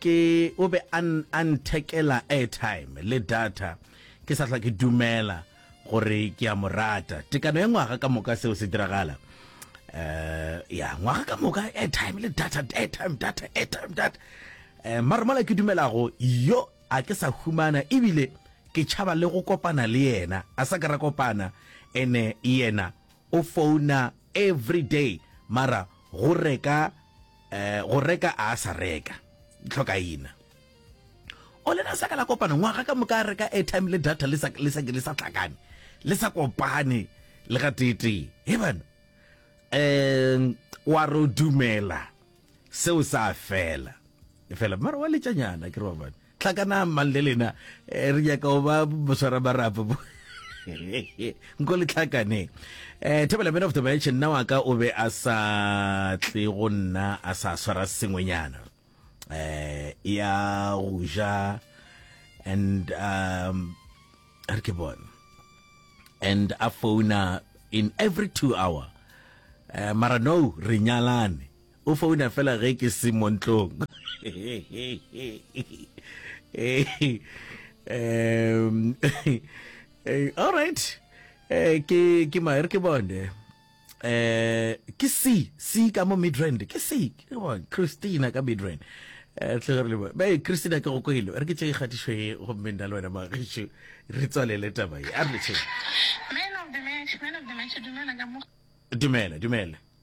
Ke o be a a nthekela airtime le data ke sa hlwa ke dumela gore ke a mo rata. Tekano ya ngwaga ka moka seo se diragala. Eh ya ngwaga ka moka airtime le data airtime data airtime data. Eh mara mola ke dumelago yo a ke sa humana ebile ke tšhaba le go kopana le yena a sa ka ra kopana ene yena o founa every day mara go reka Eh, go reka a sa reka tlhokaina o lena sa ka la kopana ngwaga ka moka reka airtime le data le sa le sa le sa tlakane le sa kopane le ga tete he bana eh wa ro dumela seo sa fela fela mara wa letšanyana ke re wa bana Hlakanang mang le lena eh, re nyaka go ba boswara marapo bo nko le tlhakaneng um thebela man of the match nna wa ka o be a sa tle go nna a sa swara sengwenyana um ya go ja and um a re ke bone and a founa in every two hour um mara no re nyalane O founa fela ge ke se mo ntlong. um, all right. Eh, ke ke ma re ke bone. Eh, ke si si ka mo Midrand. Ke si ke bone Christina ka Midrand. Eh, tle re le ba. Ba Christina ke go kwelo. Re ke tse ikgatišo e go mme nna le wena ba ge re tswalele taba e. A re tse. Men of the match, men of the match dumela ka mo. Dumela, dumela.